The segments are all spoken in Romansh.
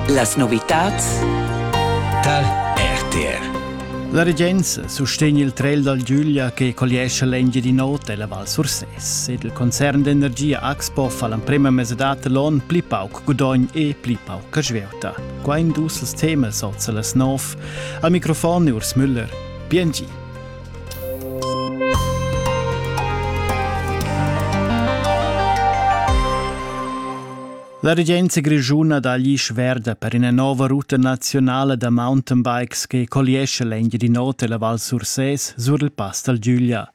Las novitads tar RTR. La regenza sustegn il trail dal Giulia che colliescha l'Engiadin'Ota e la Val Sursès ed il concern d'energia Axpo fa l'emprema mesadad l'on pli pauc gudogn e pli pauc svieuta. Qua in dus temas oz las nov. Al microfon Urs Müller. Bien gi. La regenza grischuna dagli sverda per ina nova ruta nazionale da mountainbikes che colliesce l'Engiadin'Ota e la Val Sursès sur il pass dal Giuglia.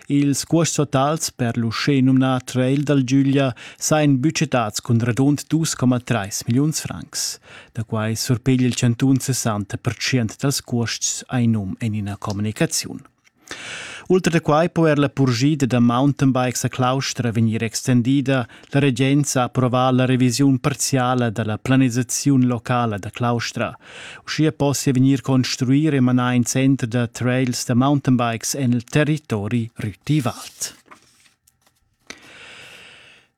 Ils cuosts totals per l'uschè nomnà trail dal Giuglia sajan budgetats cun radund 2,3 milliuns francs. Da quai surpeglia il chantun 60% dals cuosts ai num en ina communicaziun. Ultra da quai po er la purschida da mountainbikes a Claustra vegnir extendida. La regenza ha approvà la revisiun parziala da la planisaziun locala da Claustra. Uschia possia vegnir construir e manar in center da trails da mountainbikes en il territori Rüti-Wald.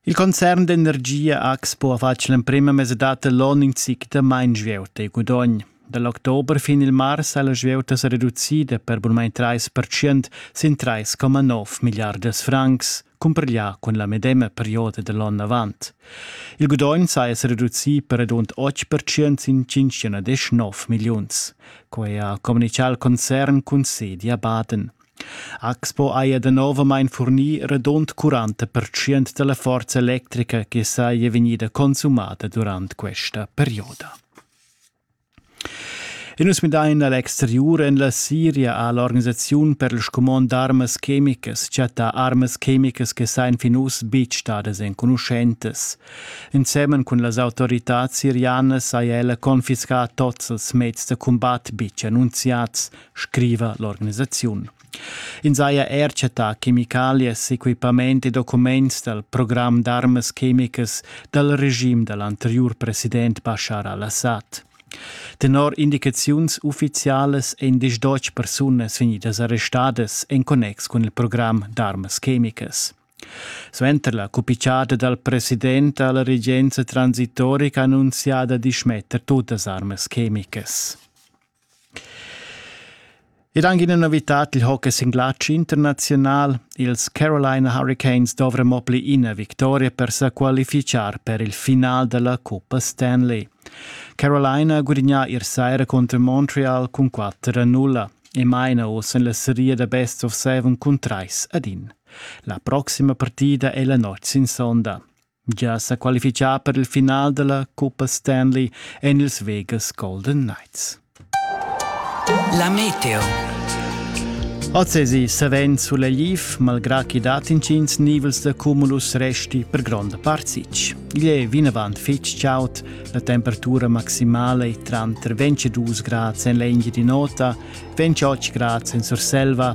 Il concern d'energia AX po ha fatg l'emprema mesadad dall'onn in zic da mein svieuta e gudogn. Dal october fin il mars ha la svieuta sa reducida per bunmain 30% sin 3,9 milliardas francs, cumpareglià cun la medema perioda da l'onn avant. Il gudogn saja sa reducì per radund 8% sin 5,9 milliuns. Quai ha communichà il concern cun sedi a Baden. Axpo haja danovamain furnì radund quaranta pertschient da la forza electrica che saja vegnida consumada durant questa perioda. E nus midain a l'exteriur. En la Siria ha l'organisaziun per il scumond d'armas chemicas chattà armas chemicas che sajan fin uss betg stadas enconuschentas. Ensemen cun las autoritads sirianas haja ella confiscà tots ils meds da cumbat betg annunziads scriva l'organisaziun. Ins haja er chattà chemicalias, equipament e documents dal program d'armas chemicas dal regim da l'anteriur president Bashar al-Assad. Tenor indicaziuns uffizialas èn diesch Deutsch persunas vegnidas arrestadas en connex cun il program d'armas chemicas. Suenter la cupicciata dal president ha la regenza transitorica annunziada di schmetter tutas armas chemicas. Ed anche una novità dil hockey sin glatsch internazional. Ils Carolina Hurricanes dovrano mo pli ina victoria per sa qualificar per il final della Coppa Stanley. Carolina ha gudignato ieri sera contro Montreal con 4-0 e maina ossa la serie da best of seven cun trais ad in. La prossima partida è la notte sin sonda. gia sa qualifichà per il final della Coppa Stanley en ils Vegas Golden Knights. La meteo. Ozzesi savens sulegliv, malgrà chi dat intgins nivels da cumulus resti per gronda part sich. Igl è vinavant fitg chaud, la temperatura maximale tranter 22 grads en l'Engie di Nota, 28 grads en Surselva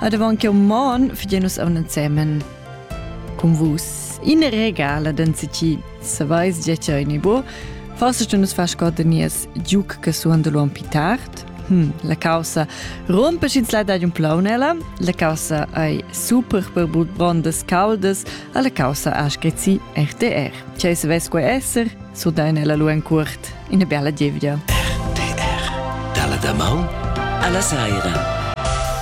Ad avant che uman fidien nus aun ensemen cun vus. In regala d'ensici, savais già ce in bo, forse tu nus fas cod nies giuc che suon de l'uom pitart. Hm, la causa rompe ins la dad un plaunella, la causa ei super per bondas caldas, alla causa ha scrizzi RTR. C'è se ves quei esser, su dainella lu en curt, in e bella gievgia. RTR, dalla damaun alla saira.